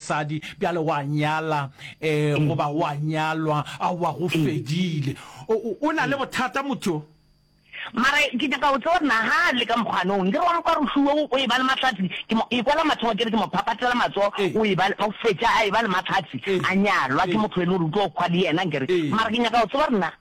Sadi, bjale o a nyala, ee, goba o a nyalwa, aowa, go fedile. O, o, o na le bothata motho yo. Mara ke nyaka go tseba, na ga a le ka mokgwanong, nke re wa mo kwa roxu wo, o eba le mahlatse, ke mo ekwa la mathomo, ke re ke mo phapatela matsogo, o eba, o fetša a eba le mahlatse, a nyalwa ke motho e le gore o tlo kgwa le yena, nke re. Mara ke nyaka go tseba gore na.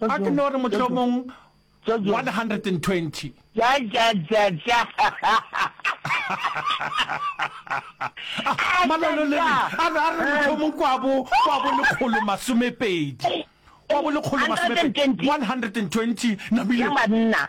A ke no re mohlomong 120. Ja, ja, ja, ja. Malololele a re, a re mohlomong kwa bo, kwa bo lekgolo masomepedi. Kwa bo lekgolo masomepedi. 120. Namile. Ya banna.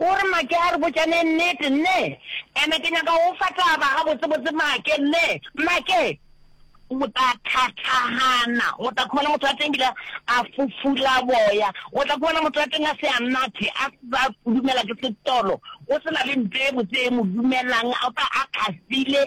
O re, Make, a re botšane nnete, nne. And-e ke nyaka go go fa taba gabotsebotse, Make, nne. Make, o tla thathagana. O tla khumana motho wa teng ebile a fufula boya. O tla khumana motho wa teng a se a nathe, a sa fudumela ke setolo. O se na le nto e botse e mo dumelang, o tla a kgafile.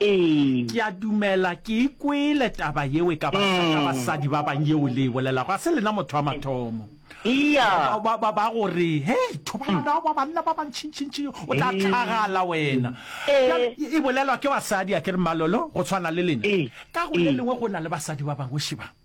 Ee. Ke a dumela ke e kwele taba yeo e ka batla ka basadi ba bang yeo le e bolela, ga se lena motho wa mathomo. Eya. Ba, ba, ba, ba go re, Hei, thobalano ya ba banna ba bantšintšintši, o tla tlhagala wena. Ee. Bjale, e, e bolelwa ke basadi, a ke re, Malolo, go tshwana le lena. Ee. Ka go le Ee. lengwe go na le basadi ba bangwe, šebang.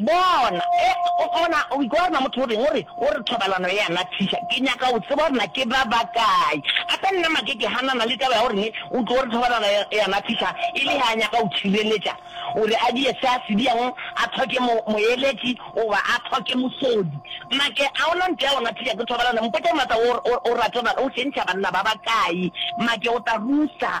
Bona, e, o bona, o ikwa gore na motho o reng, o re, o re thobalano e a nathiša. Ke nyaka go tseba gore na ke ba bakae. Gape nna make ke hanana le taba ya gore ne o tlo gore thobalano e, e a nathiša, e le ge a nyaka go tšhireletša gore a die se a se diago, a thoke mo, moeletši, goba a thoke mosodi. Make, a o na nte ya go nathiša ke thobalano? Mpotša, Martha, o, o, o rata, o tšhentšha banna ba bakae? Make, o tla rusa.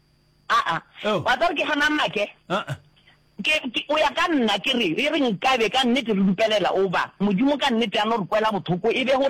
Aa, oh. wa tsare ke gana make uh-uh. ke, ke, o ya ka nna ke re e re nkabe ka nnete re dupelela oba modimo ka nnete a no re kwela bothoko e be gore